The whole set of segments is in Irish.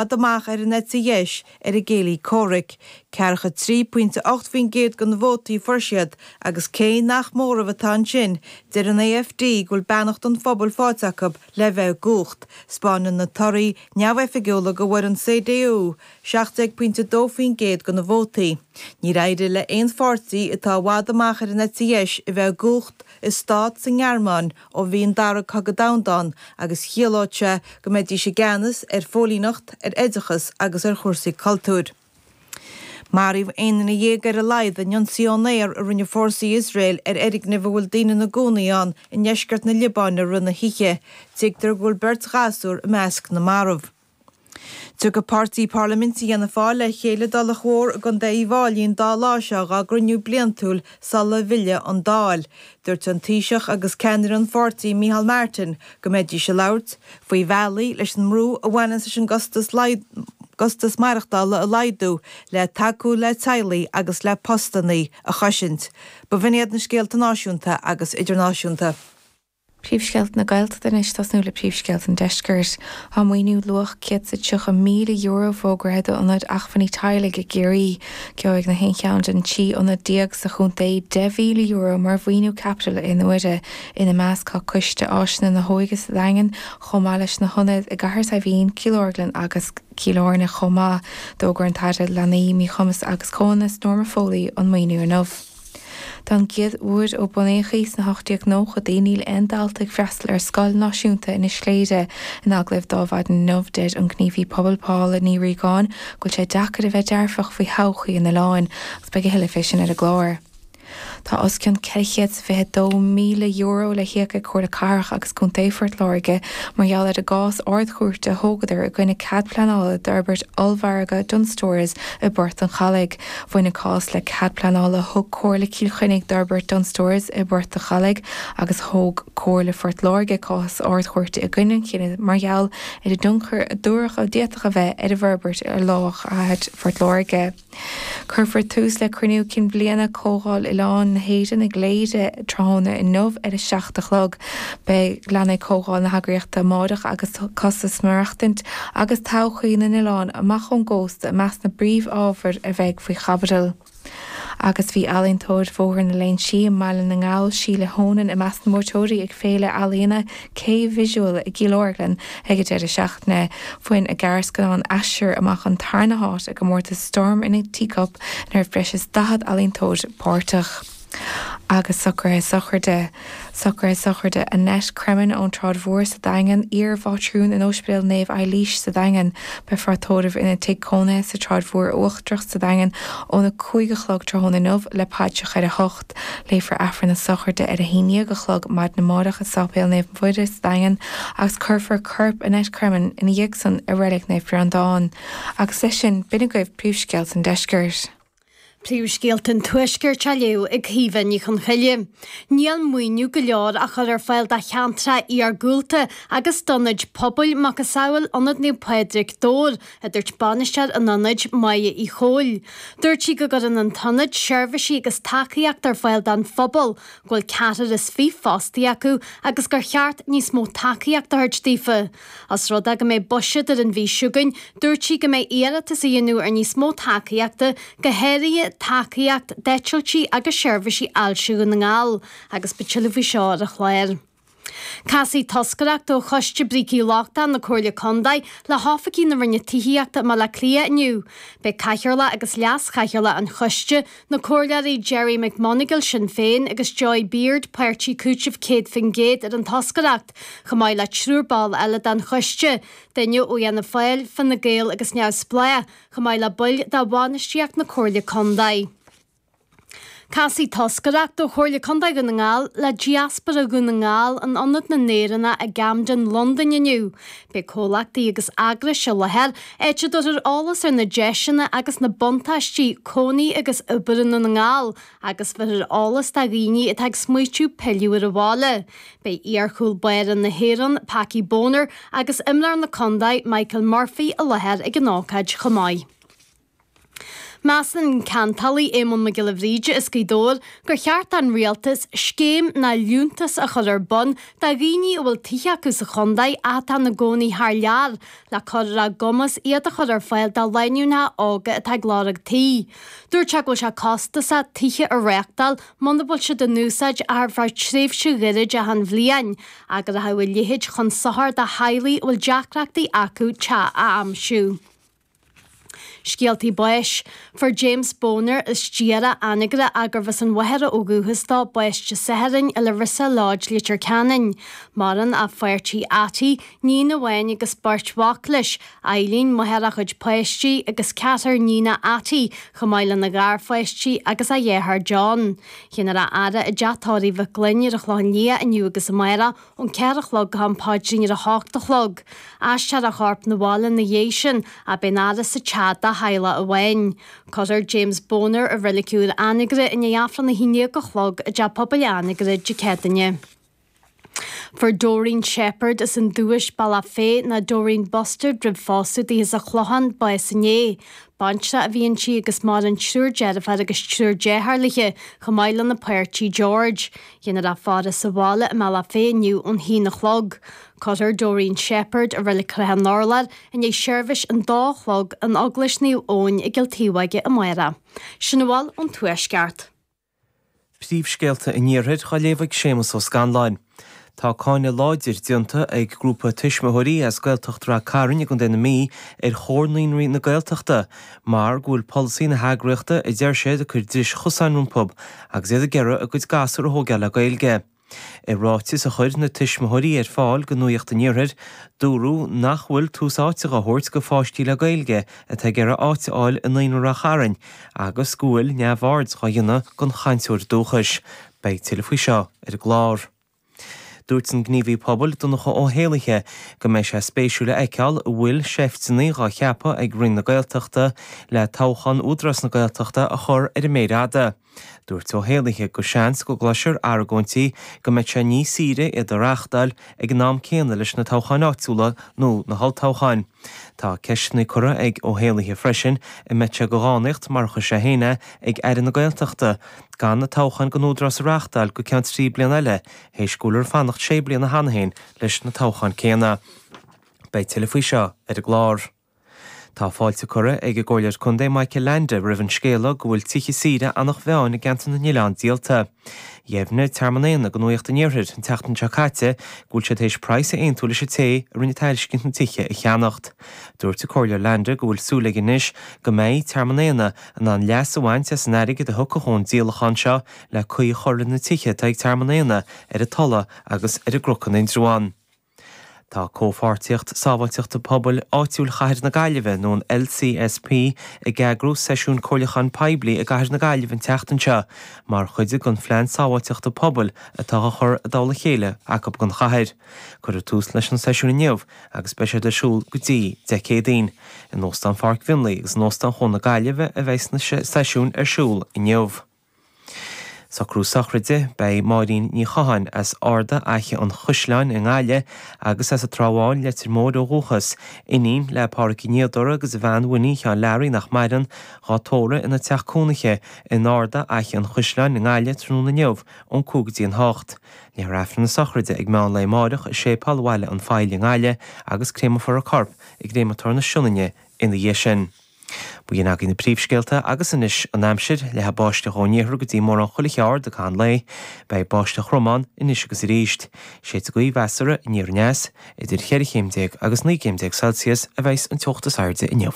bhfad amach ar an eite dheis ar a gcéilí comhraic. 43.8% de na vótaí a fuair siad agus cé nach móramh atá ansin, deir an AfD go bhfuil beannacht an phobail faighte acu le bheith i gcumhacht. 'Spáineann na torthaí neamhoifigiúla go bhfuair an CDU 17.2% de na vótaí. Níor éirigh le haon pháirtí atá i bhfad amach ar an eite dheis a bheith i gcumhacht i stát sa nGearmáin ó bhí an Dara Cogadh Domhanda ann agus chiallódh sé go mbeidís i gceannas ar phóilíneacht, ar oideachas agus ar chúrsaí cultúir. Maraíodh aon duine dhéag ar a laghad in ionsaí ón aer a rinne fórsaí Iosrael ar fhoirgneamh a bhfuil daoine ina gcónaí ann i ndeisceart na Liobáine i rith na hoíche, tuigtear go bhfuil beirt ghasúr i measc na marbh. Tiocfaidh páirtí parlaiminte Fhianna Fáil le chéile i dTulach Mhór i gContae Uíbh Fhailí an dá lá seo dhá gcruinniú bliantúil sula bhfillfidh an Dáil. Dúirt an Taoiseach agus ceannaire an pháirtí Micheál Martin go mbeidís ag labhairt faoi bhealaí leis an mbrú a bhaineann leis an gcostas maireachtála a laghdú le tacú le teaghlaigh agus le postannaí a chosaint. Ba bh'in iad na scéalta náisiúnta agus idirnáisiúnta. Príomhscéalta na Gaeltachta anois, ag tosnú le príomhscéalta an Deiscirt. Tá maoiniú luach €130,000 fógraithe d'ionaid acmhainní teaghlaigh i gCiarraí. Gheobhaidh na haon cheann den trí ionad déag sa chontae €10,000 mar mhaoiniú caipitil aon uaire. Ina measc tá Coiste Áiseanna na hÓige sa Daingean chomh maith leis na hionaid i gCathair Saidhbhín, Cill Orglan agus Cill Airne chomh maith. D'fhógair an tAire Leanaí, Míchumas agus Comhionannas, Norma Foley an maoiniú inniu. Don gcéad uair ó bunaíodh í sna hocht-déag-nóchaidí níl aon dalta ag freastal ar scoil náisiúnta Inis Chléire. In agallamh ar maidin inniu deir an gníomhaí pobail Paula Ní Ríogáin go bhfuil sé deacair a bheith dearfach faoi thodhchaí an oileáin agus beidh a thuilleadh fé sin ar an gclár. Tá os cionn €422,000 le híoc ag Comhairle Cathrach agus Contae Phort Láirge mar gheall ar an gcás Ard-Chúirte a thógadar i gcoinne cead pleanála d'fhorbairt ollmhargadh Dunnes Stores i bPort an Chalaidh. Bhain an cás le cead pleanála a thug Comhairle Chill Chainnigh d'fhorbairt Dunnes Stores i bPort a' Chalaidh agus thóg Comhairle Phort Láirge cás sa Ard-Chúirt i gcoinne an chinnidh mar gheall ar an dtionchar a dúradh a d'fhéadfadh a bheith ag an bhforbairt ar lár chathair Phort Láirge. Cuirfear tús le Cruinniú Cinn Bhliana Comhdháil Oileáin na hÉireann i gCléire tráthnóna inniu ar a seacht a chlog. Beidh leanfaidh Comhdháil na heagraíochta amárach agus tá costas maireachtaint agus todhchaí na n-oileán amach ón gcósta i measc na bpríomhábhair a bheidh faoi chaibidil. Agus bhí ealaíontóir Bhóthar na Léinsí i mBaile na nGall, Síle Honan, i measc na mbuaiteoirí ag Féile Ealaíona K Visual i gCill Orglan ag an deireadh seachtaine. Bhain a gearrscannán Aistear amach an tarna háit i gcomórtas Storm in a Teacup ina raibh breis is 40 ealaíontóir páirteach. Agus socruithe sochraide, socruithe sochraide, Annette Cremin ón tSráid Mhór sa Daingean, iar-mhátrún in Ospidéal Naomh Eilís sa Daingean, beifear á tóramh ina tigh cónaithe sa tSráid Mhór Uachtarach sa Daingean óna 5 a chlog tráthnóna inniu le paidreacha ar a hocht. Léifear Aifreann na Sochraide ar a haon dhéag a chlog maidin amárach i Sáipéal Naomh Muire sa Daingean agus cuirfear corp Annette Cremin ina dhiaidh san i Reilig Naomh Breandán. Agus leis sin, b'in agaibh príomhscéalta an Deiscirt. Príomhscéalta an Tuaiscirt á léamh ag Caoimhe Ní Chonchoille. Níl maoiniú go leor á chur ar fáil do cheantracha iargúlta agus d'ionaid pobail, macasamhail Ionad Naomh Pádraig, Dobhar, a dúirt bainisteoir an ionaid, Máire Uí Chomhaill. Dúirt sí go gcuireann an t-ionad seirbhísí agus tacaíocht ar fáil don phobal, go bhfuil ceathrar is fiche fostaithe acu agus gur cheart níos mó tacaíocht a thabhairt daofa. Os rud é go mbeidh buiséad ar an mhí seo chugainn, dúirt sí go mbeidh iarratas á dhéanamh ar níos mó tacaíochta, go háirithe tacaíocht d'eitiltí agus seirbhísí ailse Dhún na nGall, agus beidh tuilleadh faoi seo ar an chlár. Casfaidh toscaireacht ó Choiste Brící Lochtacha na Comhairle Contae le hoifigigh na Roinne Tithíochta i mBaile Átha Cliath inniu. Beidh Cathaoirleach agus Leas-Chathaoirleach an Choiste, na Comhairleoirí Gerry McMonagle, Sinn Féin, agus Joy Beard, Páirtí Cúitimh 100% ar an toscaireacht. chomh maith le triúr ball eile den choiste, duine ó Fhianna Fáil, Fine Gael agus Neamhspleách, chomh maith le baill de bhainistíocht na Comhairle Contae. Casfaidh toscaireacht ó Chomhairle Contae Dhún na nGall le Diaspóra Dhún na nGall in Ionad na nÉireannach i gCamden, Londain inniu. Beidh comhlachtaí agus eagrais i láthair áit a dtabharfar eolas ar na deiseanna agus na buntáistí cónaí agus oibre i nDún na nGall, Agus bhéarfar eolas do dhaoine atá ag smaoitiú pilleadh ar an bhaile, beidh iarchúl báire na hÉireann, Packie Bonner, agus imreoir na contae, Michael Murphy, i láthair ag an ócáid chomh maith. Measann an ceantálaí Éamonn Mac Giolla Bhríde as Gaoth Dobhair gur cheart don Rialtas scéim nó liúntas a chur ar bun do dhaoine a bhfuil tithe acu sa chontae ach atá ina gcónaí thar lear le cur ar a gcumas iad a chur ar fáil do lánúineacha óga atá ag lorg tí. Dúirt sé go bhfuil sé costasach tithe a réachtáil muna bhfuil siad in úsáid ach ar feadh tréimhse ghairid achan bhliain, agus go rachadh a leithéid chun sochair do theaghlaigh a bhfuil deacrachtaí acu teach a aimsiú. Scéaltaí Báis. Fuair James Bonar as Diarach, Anagaire, gurbh as an Mhachaire ó dhúchas dó, bás Dé Sathairn i Larissa Lodge, Leitir Ceanainn. Maireann a pháirtí Attie, níon amháin agus beirt mhac leis, Eilín, máthair a chuid páistí, agus ceathrar níon Attie, chomh maith lena gharpháistí agus a dheartháir John. Dhéanfar a fhaire i dTeach Tórraimh Mhic Fhloinn ar an Chlochán Liath inniu agus amárach, ón ceathair a chlog go ham paidrín ar a hocht a chlog. Aistreofar a chorp 'na bhaile ina dhiaidh sin agus beidh an fhaire sa teach dá theaghlach amháin. Cuirfear James Boner i Reilig Úr Anagaire i ndiaidh Aifreann a haon dhéag a chlog i dTeach Pobail Anagaire Dé Céadaoine. Fuair Doreen Sheppard as an Dubhais, Bealach Féich, ná Doreen Bustard roimh phósadh di as an Chlochán, bás inné. Baintreach a bhí inti agus maireann triúr deirféar agus triúr deartháir léi, chomh maith lena páirtí George. Déanfar í a fhaire sa bhaile i mBealach Féich inniu ón h-aon a chlog. Cuirfear Doreen Sheppard, i Reilig Shrath an Urláir, i ndiaidh seirbhis an dó a chlog in Eaglais Naomh Eoin i gCill Taobhóige amárach. Sin a bhfuil ón tuaisceart. Príomhscéalta an Iarthair dhá léamh ag Séamus Ó Scanláin. Tá cáineadh láidir déanta ag grúpa tuismitheoirí as Gaeltacht Ráth Chairn i gContae na Mí ar Chomhar Naíonraí na Gaeltachta Mar go bhfuil polasaí na heagraíochta, a deir siad, ag cur dris chosáin rompu agus iad ag iarraidh a gcuid gasúr a thógáil le Gaeilge. I ráiteas a chuir na tuismitheoirí ar fáil go Nuaíocht an Iarthair, dúradh nach bhfuil tús áite dhá thabhairt go pháistí le Gaeilge atá ag iarraidh áit a fháil i Naíonra Ráth Chairn agus go bhfuil neamhaird dhá dhéanamh den chainteoir dúchais. Beidh tuilleadh faoi seo ar an gclár. Dúirt an gníomhaí pobail, Donncha Ó hÉallaithe, go mbeidh sé spéisiúil a fheiceáil an bhfuil seifteanna dhá cheapadh ag Roinn na Gaeltachta le toghchán Údarás na Gaeltachta a chur ar an méar fhada. Dúirt Ó hÉallaithe go seans go gcloisfear argóintí go mbeadh sé níos saoire iad a reáchtáil ag an am céanna leis na toghcháin áitiúla nó na holltoghcháin. Tá ceisteanna curtha ag Ó hÉallaithe freisin an mbeadh sé go dhánaíocht, mar a chuir sé féin é, ag Aire na Gaeltachta, gan na toghcháin don Údarás a reáchtáil go ceann trí bliana eile, théis go bhfuiltear ag fanacht sé bliana cheana féin leis na toghcháin céanna. Beidh tuilleadh faoi seo ar an gclár. Tá fáilte curtha ag an gComhairleoir Contae Michael Leainde roimh an scéala go bhfuil tithe saoire Anach Mheáin i gCeantar na nOileán díolta. Dheimhnigh Tearmann Éanna go Nuaíocht an Iarthair an tseachtain seo caite go bhfuil siad théis praghas a aontú leis an té a rinne tairiscint na tithe a cheannacht. Dúirt an Comhairleoir Leainde go bhfuil súil aige anois go mbeidh Tearmann Éanna in ann leas a bhaint as an airgead a thiocfadh ón díolachán seo le caoi a chur ar na tithe atá ag Tearmann Éanna ar an Tulaigh agus ar an gCnoc in Indreabhán. Tá Comhpháirtíocht Sábháilteachta Pobail Áitiúil Chathair na Gaillimhe nó an LCSP ag eagrú seisiún comhairliúcháin poiblí i gCathair na Gaillimhe an tseachtain seo mar chuid den Phlean Sábháilteachta Pobail atá dhá chur i dtoll a chéile acu don chathair. Cuireadh tús leis an seisiún inniu agus beidh siad ar siúl go dtí Dé Céadaoin in Óstán Pháirc Mhionlaigh agus in Óstán Chuan na Gaillimhe a bheas na sé seisiún ar siúl inniu. Socrú sochraide, Beidh Máirín Ní Chatháin, as Arda Fhaiche an Chuisleáin i nGaillimh agus as an Trá Bháin, Leitir Móir ó dhúchas, iníon le Pádhraic an Fhíodóra agus a bhean Winnie Sheáin Learaí nach maireann, dhá tórradh ina teach cónaithe in Arda Fhaiche an Chuisleáin i nGaillimh tráthnóna inniu ón cúig go dtí an hocht. Léifear aifreann na sochraide ag meán lae amáireach i Séipeál Bhaile an Phoill i nGaillimh agus créamofar a corp i gcréamatóir na Sionainne ina dhiaidh sin. B'in agaibh na príomhscéalta agus anois an aimsir, leathfaidh báisteach ón iarthar go dtí mórán chuile cheard i gcaith an lae, beidh báisteach throm ann anois agus arís. Séidfidh sé ina ghaoth mheasartha aniar aneas, idir cheithre chéim déag agus naoi gcéim déag Celsius a bheidhs an teocht is airde inniu.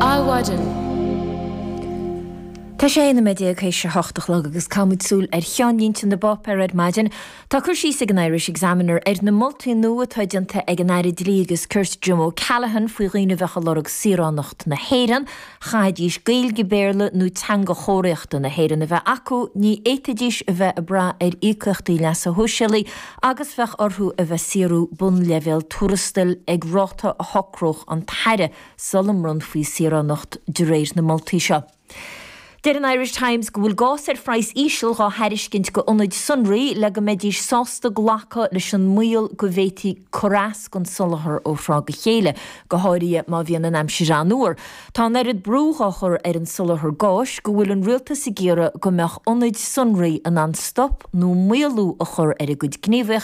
Adhmhaidin. Tá sé ina 19 tar éis a hocht a chlog agus caithfidh muid súil ar cheannlínte na bpáipéar ar maidin. Tá cur síos ag an Irish Examiner ar na moltaí nua atá déanta ag an Aire Dlí agus Cirt Jim O'Callaghan faoi dhaoine a bheadh ag lorg saoránacht na hÉireann, chaithfidís Gaeilge, Béarla nó teanga chomharthaíochta na hÉireann a bheith acu, ní fhéadfaidís a bheith ag brath ar íocaíochtaí leasa shóisialaigh, agus bheadh orthu a bheith saorú bunleibhéal tuarastail ag ráta a shocródh an tAire sula mbronnfaí saoránacht de réir na moltaí seo. Deir an Irish Times go bhfuil gás ar phraghas íseal dhá thairiscint go ionaid sonraí le go mbeidís sásta glacadh leis an mbaol go bhféadfaí cur as don soláthar ó thráth go chéile, go háirithe má bhíonn an aimsir an-fhuar. Tá an oiread brú á chur ar an soláthar gáis go bhfuil an rialtas ag iarraidh go mbeadh ionaid sonraí in ann stop nó maolú a chur ar a gcuid gníomhaíochtaí.